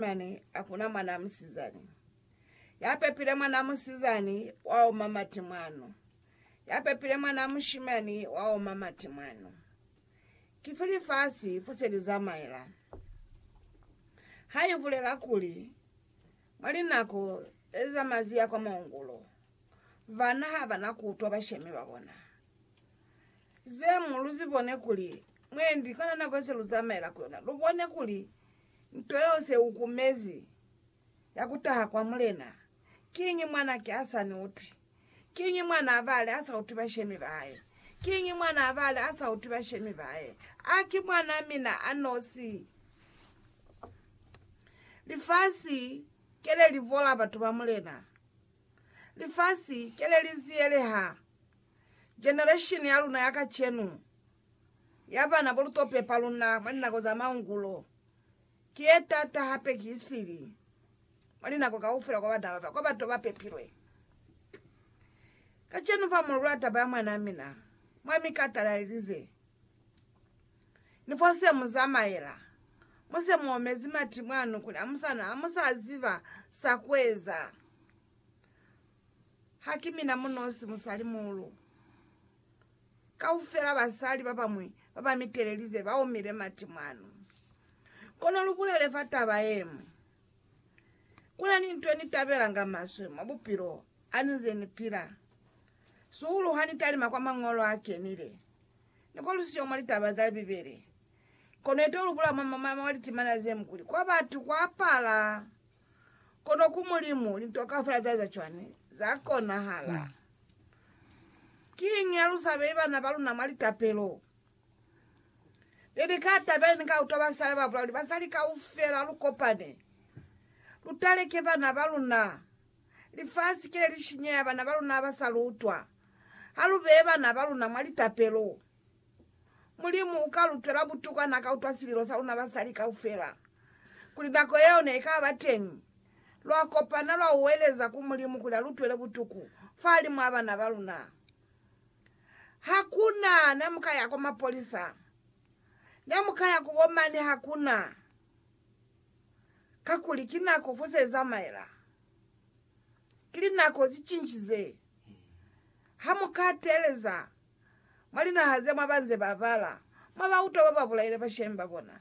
Mane a kuna mwanaa musizani. Ya pepile mwanaa musizani wa oma mati mwanu. Ya pepile mwanaa mushimani wa oma mati mwanu. Ki fo lifasi fo se li zamaela. Ha i bulela kuli, Mwa linako ze za mazi ya kwa maungulo, bana ha ba na ku utwa bashemi ba bona. Ze mu lu zibone kuli mwendi kona nako ye se lu zamaela ku yona, lu bone kuli Nto yeo se u kumezi, ya ku taha kwa Mulena. Kiñi mwan'a ki a sa ni utwi? Kiñi mwan'a bali a sa utwi bashemi ba hae? Kiñi mwan'a bali a sa utwi bashemi ba hae? A ki mwan'a mina a nosi? Lifasi ke le li bola batu ba Mulena. Lifasi ke le li ziyeleha generesheni ya luna ya kacenu. ya ba na bulutope pa luna mwa linako za maungulo ki ye taata hape ki sili mwa linako kaufela kwa bana ba kwa bato ba pepilwe. Kacenu fa mu lula taba ya mwanaa mina, Mwami Carter na lilize, Ni fo se mu zamaela, mu se mu omezi mati mwanu kuli amusana, hamusa ziba sa kueza. Haki mina munosi musalimuhulu. Kaufela basali babañwi babamitelelize baomile mati mwanu. Kono lubulele fa taba yeñwi. Kunani nto nitabelanga maswe mwa bupilo hanize nipila, sihulu hanitalima kwa Mañolo Akenile. Nikolisiyo mwa litaba za Bibele, kono itolubula mwa mwa litimana zemkuli kwa batu kwapala. Kono ku Mulimu, linto kaufela za eza cwani? Za konahala. Kiñi halusa beyi bana baluna mwa litapelo? Neli ka tabela ni ka utwa basali babolela kuli, Basali kaufela lu kopane, lu taleke bana baluna. Lifasi kile li shinyeha bana baluna haba sa lu utwa. Ha lu beye bana baluna mwa litapelo. Mulimu u ka lu twela butuka n'a ka utwa sililo sa luna basali kaufela. Kuli nako yeo ne i ka ba teñi, lwa kopana lwa uweleza ku Mulimu kuli a lu twele butuku fahalimw'a bana ba luna. Ha ku na ne mu ka ya kwa mapolisa. Ne mu ka ya ku bo mani ha ku na, kakuli ki nako fo se zamaela. Ki linako ze cincize. Ha mu ka teeleza mwa linaha ze mwa ba nze ba bala, mwa ba utwa ba ba bulaile bashemi ba bona.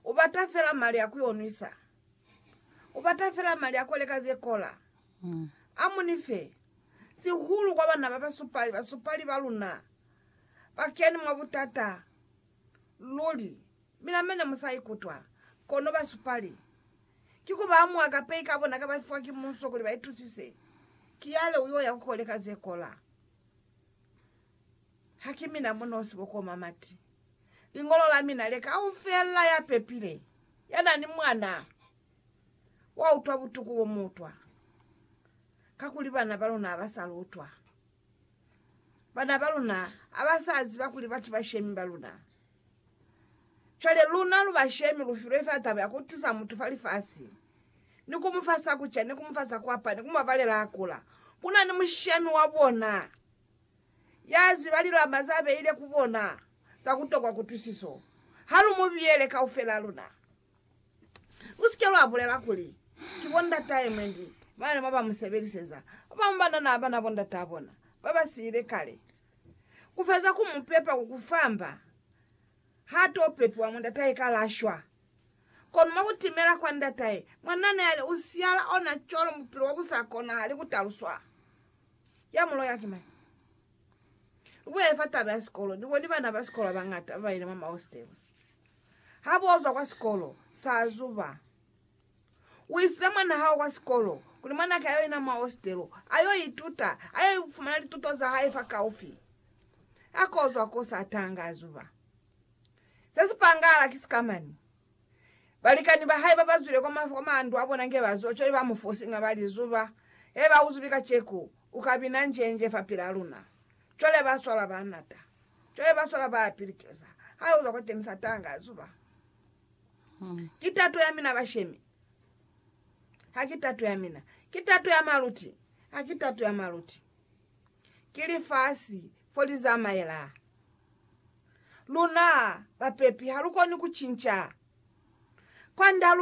U bata fela mali a ku onwisa. U bata fela mali a ku leka ze kola. A mu ni fe, sihulu kwa bana ba basupali, basupali ba luna ba keni mwa butata luli, Mina mene mu sa ikutwa. Kono basupali, ki ku ba mwa kapei ka bona ka ba fiwa ki munso kuli ba itusise, ki yale u yo ya ku koleka ze kola. Ha ki mina mu nosi bokoma mati. Liñolo la mina le kaufela ya pepile, ya na ni mwana, wa utwa butuku bo mu utwa. Kakuli bana ba luna ha ba sa lu utwa. Bana ba luna ha ba sa ziba kuli ba ki bashemi ba luna. Cwale luna lu bashemi lu filwe fa taba ya ku tiza mutu fa lifasi, ni ku mu fa sa ku ca, ni ku mu fa sa ku apara, ni ku mu babalela a kula. Ku na ni mushemi wa bona ya ziba lilama za beile ku bona za ku tokwa kutwisiso. Ha lu mu biyele kaufelaa luna. Lu si ke lwa bulela kuli, Ki bo ndatahe mwe ndi ba ne mwa ba mu sebeliseza. Ba bañwi ba na na bana bo ndataa bona ba ba siile kale. Kufeza ku mu pepa ku ku famba, ha to pepiwa mwa ndatahe ka la shwa. Kono mwa ku timela kwa ndatahe, mwanna ne a li u siyala ona cwalo mu bupilo bwa bu sa konahali ku taluswa. Ya mu loya ki mañi? Lu bulele fa taba ya sikolo. Ni boni bana ba sikolo ba bañata ba ba yile mwa mahostele. Ha bo zwa kwa sikolo, sa zuba. U isize mwan'a hao kwa sikolo kuli mwan'a hae a yo yena mwa hositelo, a yo ituta, a yo fumana lituto za hae fakaufi. Ha k'o zwa k'o sa tanga a zuba. Se si pangahala ki sikamani. Balikani ba hae ba ba zwile kwa mandu a bona nge ba zuba, cwale ba mu fosiña ba li, Zuba, he ba u zubi kaceku, u ka bina njenje fapil'a luna. Cwale ba swala, ba nata. Cwale ba swala, ba pilikeza. Ha yo zwa kwateñi sa tanga a zuba. Ki tato ya mina bashemi, ha ki tato ya mina. Ki tato ya maluti, ha ki tato ya maluti. Ki lifasi fo li zamaela. Luna bapepi ha lu koni ku cinca kwand'a lu